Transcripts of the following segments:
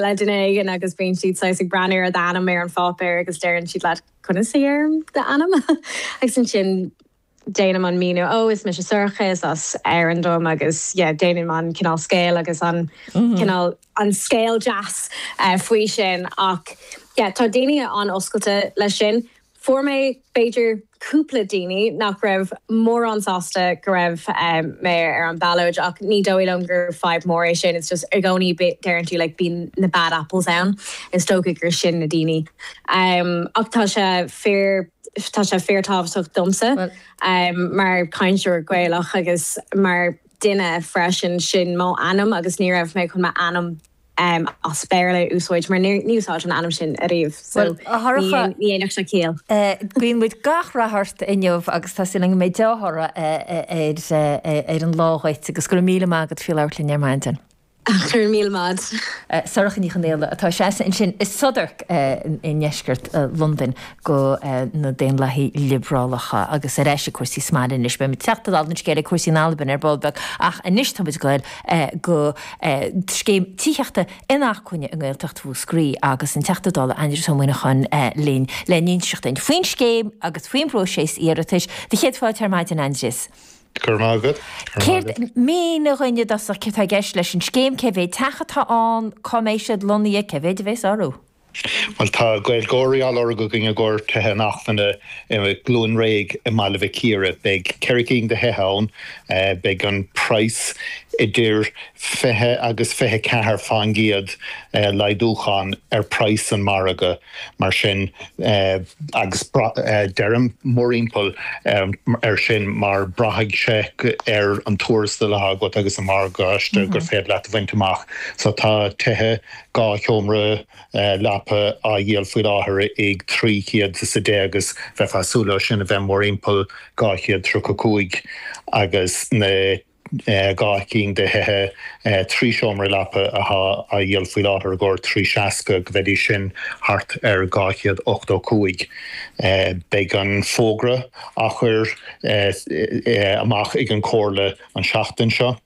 le duine éigin agus bíonn siad saghas ag breathnú ar d'ainm ar an pháipéar agus deireann siad leat Conas a dhéarfainn d'ainm? agus ansin déanaim an míniú, Ó is mise Sorcha, is as Árainn dom agus yeah déanaim an cineál scéal agus an cineál an scéal deas faoi sin ach yeah tá daoine an-oscailte leis sin. Fuair mé, b'fhéidir, cúpla daoine nach raibh mórán sásta go raibh mé ar an bhallóid ach ní dóigh liom gur fadhb mór é sin, just i gcónaí deireann tú like bíonn na bad apples ann, is dócha gur sin na daoine. Ach tá sé fíor, tá sé fíor tábhachtach domsa mar chainteoir Gaelach agus mar dhuine freisin, sin mo ainm agus ní raibh mé chun m'ainm, as Béarla a úsáid mar níor úsáideadh an ainm sin ariamh so Bhuel, a Shorcha, ní dhéanfadh sé ciall. guíonn muid gach rath ort inniu agus tá súil againn go mbeidh dea-thoradh ar an lá dhuit agus go raibh míle maith agat faoi labhairt linn ar maidin. Go raibh míle maith. Sorcha Ní Chonghaile atá ag seasamh ansin i Southwark i ndeisceart Londain do na Daonlathaithe Liobrálacha agus ar ais ag cúrsaí sa mbaile anois. Beidh muid ag teacht i dtaobh an scéil ar chúrsaí in Albain ar ball beag ach anois tá muid ag dul go scéim tithíochta inacmhainne i nGaeltacht Mhúscraí agus an Teachta Dála Aindrias Ó Muimhneacháin linn le n-inseacht dúinn faoin scéim agus faoin bpróiséas iarratais. Sé do chéad fáilte ar maidin Aindrias. Go raibh maith agat. Céard, mínigh dhúinn i dtosach, céard tá i gceist leis an scéim, cé mhéad teach atá ann, cá mbeidh siad lonnaithe, cé mhéad a bhéas orthu? Bhuel, tá Gaeilgeoirí á lorg againn i gcomhair tithe inacmhainne i gCluain Réidh i mBaile Mhic Íre. Beidh cheithre cinn de thithe ann. Beidh an praghas idir fiche agus fiche ceathair fán gcéad laghdúcháin ar praghas an mhargaidh, mar sin, agus deirim mórthimpeall air sin mar braithfidh sé ar an tuarastal atá agat agus an morgáiste gur féidir leat a bhaint amach. So tá tithe dhá sheomra leapa á dhíol faoi láthair ag trí chéad is a deich agus bheifeá ag súil leo sin a bheith mórthimpeall dhá chéad tríocha cúig agus na dhá chinn de thithe trí sheomra leapa athá á dhíol faoi láthair i gcomhair 3 seasca go bheidís sin thart ar dhá chéad ochtó cúig. Beidh an fógra á chur amach ag an Chomhairle an tseachtain seo.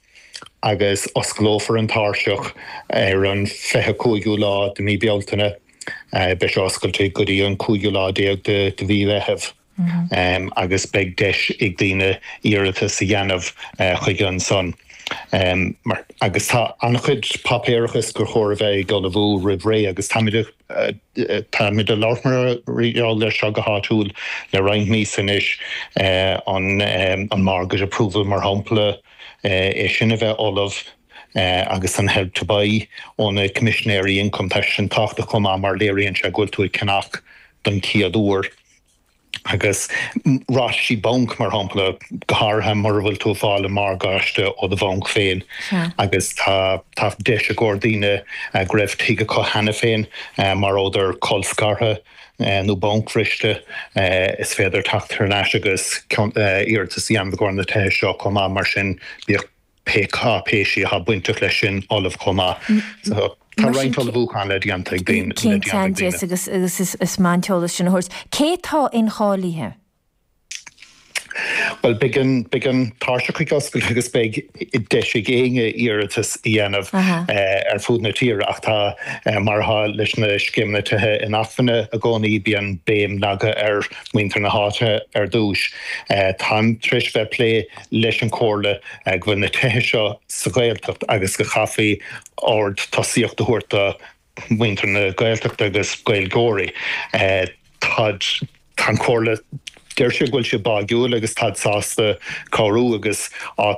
agus osclófar an tairseach ar an 25ú lá de mí Bealtaine. Beidh sé oscailte go dtí an cúigiú lá déag de mhí Mheitheamh agus beidh deis ag daoine iarratas a dhéanamh chuige ansan. Mar agus tá an-chuid páipéarachais gur chóir a bheith ag ullmhú roimh ré agus táimid táimid ag labhairt mar gheall ar seo go háitiúil le roinnt míosa anois, an Mortgage Approval mar shampla, é sin a bheith ullamh agus an Help to Buy ó na Coimisinéirí Ioncaim. Tá sin tábhachtach chomh maith mar léiríonn sé go bhfuil tú ag ceannach don chéad uair agus ráitisí bainc, mar shampla, go háirithe mura bhfuil tú ag fáil an morgáiste ó do bhanc féin agus tá deis i gcomhair daoine go raibh tigh acu cheana féin má fuaireadar colscartha. nó bancbhriste, is féidir teacht thar n-ais agus iarratas a dhéanamh i gcomhair na tithe seo chomh maith, mar sin bíodh pé cáipéisí atá bainteach leis sin ullamh chomh maith. So tá roinnt ullmhúchán le déanamh ag daoine. Cinnte ann de, agus is maith an t-eolas sin a thabhairt, cé tá incháilithe? Bhuel, beidh an tairseach ag oscailt agus beidh deis ag éinne iarratas a dhéanamh ar fud na tíre ach tá, mar atá leis na scéimeanna tithe inacmhainne i gcónaí, bíonn béim leagtha ar mhuintir na háite ar dtús. Táim tar éis bheith ag plé leis an Chomhairle go bhfuil na tithe seo sa Ghaeltacht agus go gcaithfí ard tosaíocht a thabhairt do na. muintir na Gaeltachta agus Gaeilgeoirí. Táid, tá an Chomhairle, deir siad go bhfuil siad báidhiúil agus táid sásta cabhrú agus áit